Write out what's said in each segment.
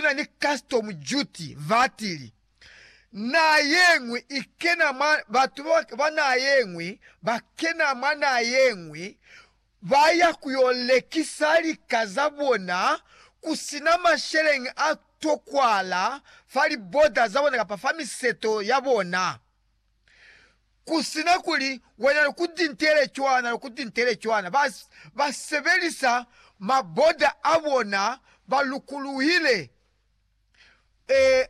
na ni custom duty vatili, Naha yeñwi ikena mwa batu ba naha yeñwi bakena mwa naha yeñwi, baya kuyo lekisa lika zabona kusina masheleñi a tokwahala fa liboda zabona kapa fa miseto yabona. Ku si na kuli wena loku tintele cwana, loku tintele cwana, ba, ba sebelisa maboda a bona, ba lukuluhile. Ee,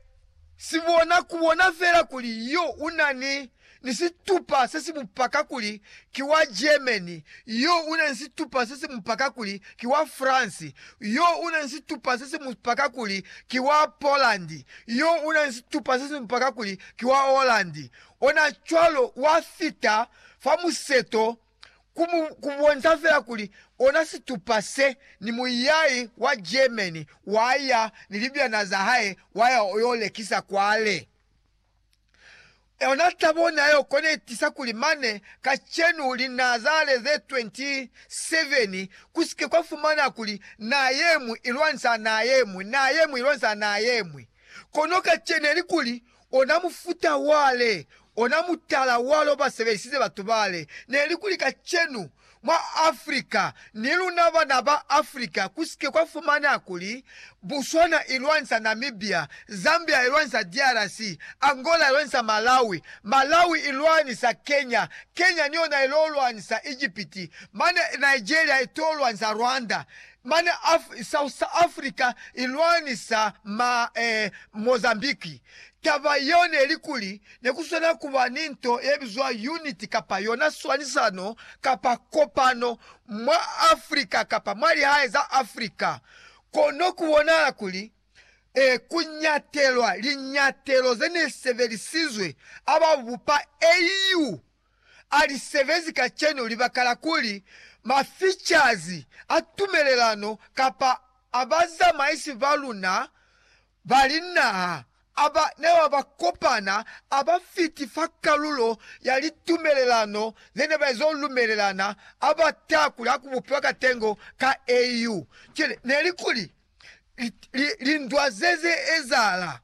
si bona, ku bona fela kuli yo u na ni, ni situpa se si mu paka kuli ki wa Germany, yo u na ni situpa se si mu paka kuli ki wa France, yo u na ni situpa se si mu paka kuli ki wa Poland, yo u na ni situpa se si mu paka kuli ki wa Holland, ona cwalo wa fita fa museto ku mu, ku bonsa fela kuli ona situpa se, ni muyai wa Germany wa ya ni libyana za hae wa ya yo lekisa kwale. Ona tabo ne ayo kona itiisa kuli mane kacenu linaa za ale ze 27 ku si ke kwa fumana kuli naa ye mwi i lwanisa naa ye mwi, naa ye mwi i lwanisa naa ye mwi. Kono kacenu elikuli ona mufuta wale, ona mutala wale obasebelisize batu bale, nelikuli kacenu mwa Africa, ni luna bana ba Africa, kusike kwa fumaneha kuli, Botswana ilwanisa Namibia, Zambia ilwanisa DRC, Angola ilwanisa Malawi, Malawi ilwanisa Kenya, Kenya niyona ilolwanisa Egypt, mane Nigeria itolwanisa Rwanda, Mane South Africa i lwanisa ma Mozambique. Taba yeo neli kuli ne ku swanela ku ba ni nto ye bizwa unit kapa yona swanisano kapa kopano mwa Africa kapa mwa lihae za Africa. Kono ku bonahala kuli ku ñatelwa liñatelo ze ne sebelisizwe a ba bupa AU a li sebezi kacenu libaka la kuli maficazi a tumelelano kapa a bazamaisi ba luna ba linaha a ba neba ba kopana a ba fiti fa kalulo ya litumelelano ze ne ba ezo lumelelana a ba taha kuli ha ku bupiwa katengo ka AU. Cwale, ne li kuli lindwa ze ze ezahala.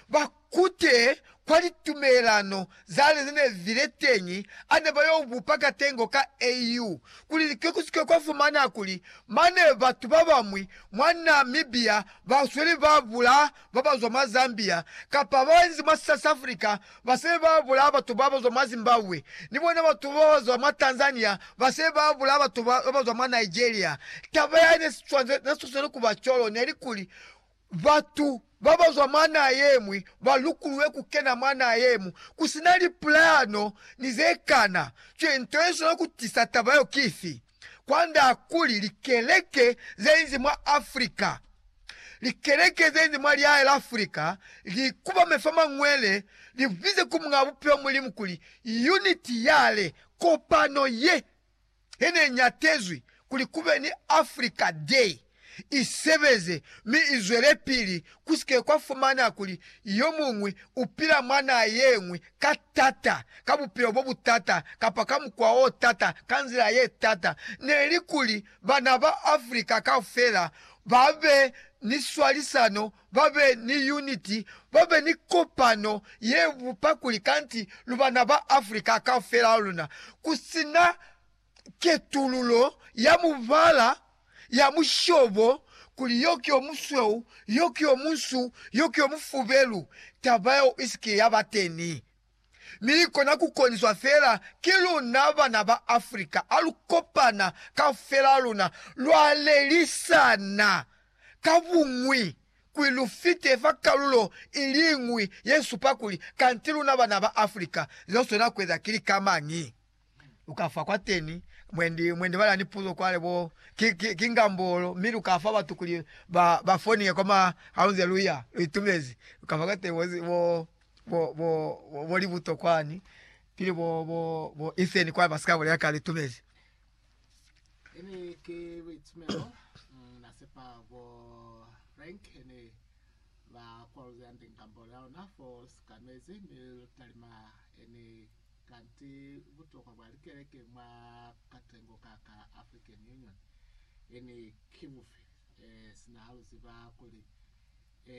ba kute kwa litumelano zale ze ne zi le teñi a ne ba yo bupa katengo ka AU kuli lika ku si ke kwa fumana kuli mane batu ba bañwi mwa Namibia ba sweli ba bulaa ba ba zwa mwa Zambia kapa ba inzi mwa South Africa ba se ba bulaa batu ba ba zwa mwa Zimbabwe ni bona batu ba ba zwa mwa Tanzania ba se ba bulaa batu ba ba zwa mwa Nigeria. Taba ya ne sa sweli ku ba cwalo ne li kuli Batu babazwa mwa naha yeñwi balukuluwe kukena mwa naha yeñwi kusina lipulano ni zekana cwe. Nto yeswana kutisa taba yo kifi? Kwanda kuli likeleke zenzi mwa Africa, likeleke zenzi mwa lihae la Africa, li kubame fa mañwele, libize ku Muñaa Bupilo Mulimu kuli, Unity yale, kopano ye. ye ne i ñatezwi kuli ku be ni Africa Day i sebeze mi i zwelepili, ku si ke kwa fumana kuli yo muñwi u pila mwa naha ye ñwi ka t'ata, ka bupilo bo bu t'ata, kapa ka mukwa o t'ata, ka nzila ye t'ata. Ne li kuli bana ba Africa kaufela ba be ni swalisano ba be ni yuniti, ba be ni kopano ye bupa kuli kanti lu bana ba Africa kaufela ha luna, ku si na ketululo ya mubala, ya mushobo, kuli yo ki yo musweu, yo ki yo munsu, yo ki yo mufubelu, taba yeo i si ke ya ba teni. Mi kona ku koniswa fela ki luna bana ba Africa ha lu kopana kaufela luna, lwa lelisana ka buñwi kuli lu fite fa kalulo i liñwi ye supa kuli kanti luna bana ba Africa, ze lu swanela ku eza ki lika mañi? lukafa kwateni mwendi mwendi bala ni puzo kwale bo ki, ki, ki ngambolo mi lukafa batu kuli ba ba foniye kwa ma haunze luya luitumezi lukafa kwateni wezi wo wo wo wolibuto kwani pili bo bo bo iseni kwa basika bole yaka litumezi. Kanti butokwa bwa likeleke mwa katengo ka ka African Union e ni ki bufi, sina ha lu ziba kuli e